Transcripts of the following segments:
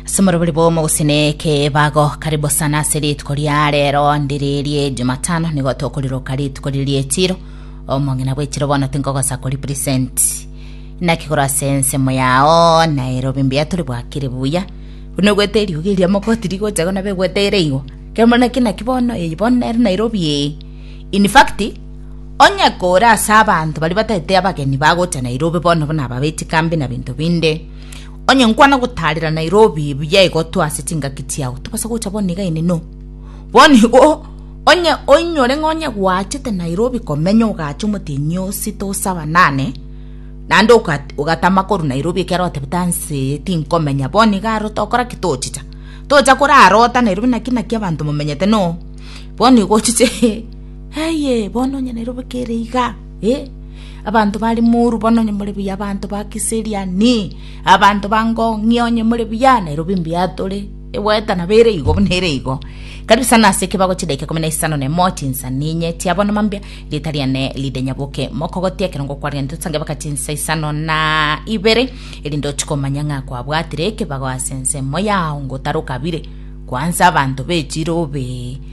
Simoro buli bomo gusineke bago karibu sana ase rituko ria rero ndiririe jumatano nigo tokoriroka rituko ririe chiro omong'ina bwechiro bono tinkogosa kori present nakigoro ase ensemo yao nairobi mbuya turi bwakire buya buna ogwete eriogi eria mogoti rigocha gona begweteire igo kero muna kinaki bono eyi bono nere nairobi eye in fact Onye kore ase abanto baria batagete abageni bagocha Nairobi bono buna aba b'echikambi na binto binde, onye nkwana gotaarera Nairobi buya igotwa ase chingaki chiao, tobasa gocha bono iga ineno. Bono igo onye oinyore ng'a onye gwachete Nairobi komenya ogaacha omotienyi oo sita osaba nane, naende ogat- ogatama korwa Nairobi ekiagera otebete anse eye tinkomenya, bono iga aro tokora ki? Tochicha. Tocha korarota Nairobi naki naki abanto momenyete noo. Bono igo ochiche. Aye, bono onye nere obe kere iga, eh, abanto bare moru bono onye more buya abanto ba kiseriani, abanto ba ngong'ia onye more buya, nere obe mbuya tore. Egoeta nabo ere igo buna ere igo. Karibu sana ase ekebago chidaika ikomi na isano na emo chinsa ninye chia bono mambia rieta riane ride nyaboke mokogotia ekero ngokwarire ntosange baka chinsa isano na ibere erinde ochie komanya ng'a kwabwatire ekebago ase ensemo yao ngotarokabire kwansa abanto be chirobe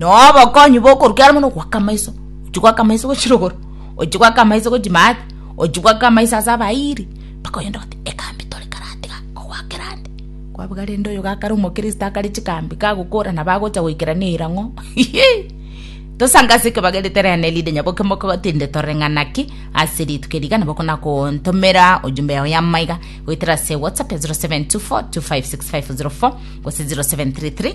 na obokonyi bokoruka ere mono goaka amaiso ochia goaka amaiso gwe chirogoro ochia goaka amaiso gwe chimati ochia goaka amaiso ase abairi mpaka oyende ogote ekambi tore kare atiga kogoakera ande kwabuga rende oyo gakare omokristo akare chikambi kagokora nabo agocha goikera na eira ng'o tosange ase ekebagerete rende erinde nyaboke mokotinde tore ng'a naki ase rituko eri iga nabo okona kontomera ojumbe yago ya maiga goetera ase whatsapp 0724256504 gose 0733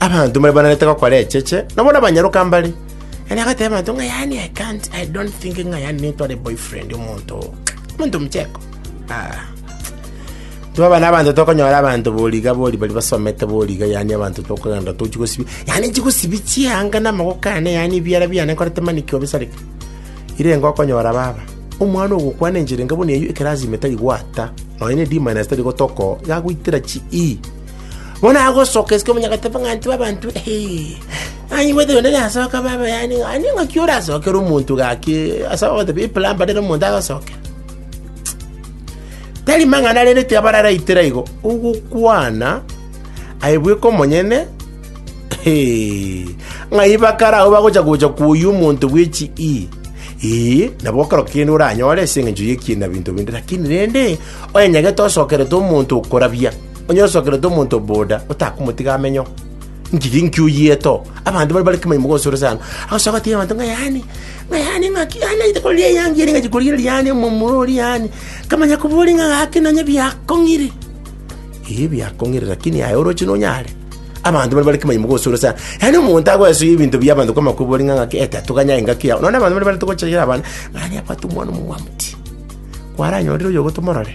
Abanto mbare bananete gokora echeche, nabo nabanyaroka mbare. Yaani agateba abanto ng'a yaani I can't, I don't think ng'a yaani nintware boyfriend omonto oo. Omonto mcheko. Ah. Twaba na abanto tokonyora abanto boriga bori bari basomete boriga yaani abanto tokogenda tochi gosibi. Yaani chigosibi chianga na amagoko ane yaani biara biane nkorete mani kio bisareke. Ire ngokonyora baba. Omwana ogokwana enchera enga bono eyio ekerasi ime tari gwata. Nonya ne D-minus tari gotoko, yagoitera chi E. Bono agosoka isiko omonyagatebe ng'a ntibe abanto, aye ngwete oyonde nere asoke abe abayani, ng'a ning'aki orasokere omonto gaki ase ogotebi eplamber nere omonto agosokera. Tari mang'ana rende tiabararaitera igo, ogokwana aye bweka omonyene ng'ai bakare agwo bagocha gocha koyia omonto bwe chi ii, eeh, nabo okero kende oranyore ase eng'encho y'ekiina binto binde, lakini rende, onyenyagete osokerete omonto okorabia. Onye osokerete omonto boda, otakomotiga amenyeo, inki inki oyiete oo? Abanto bare bare kemai moke gose ore sana, agosoka agatebia abanto ng'a yaani, ng'a yaani ng'aki yaani naite korigia eyangi ere ing'achi korigereria yaani omomura oria yaani, nkamanya koboria ng'a gaki nonye biakong'ire. Eeh biakong'ire lakini aye oroche nonyare? Abanto bare bare kemai moke gose ore sana, yaani omonto agoesoyia ebinto bia abanto kwamanya koboria ng'a ng'aki eh tatoganya engaki yao. Nonye na abanto bare bare togochayera abana, ng'a yaani abwate omwana omomwamti, kwaranyorire oyo igo tomorore.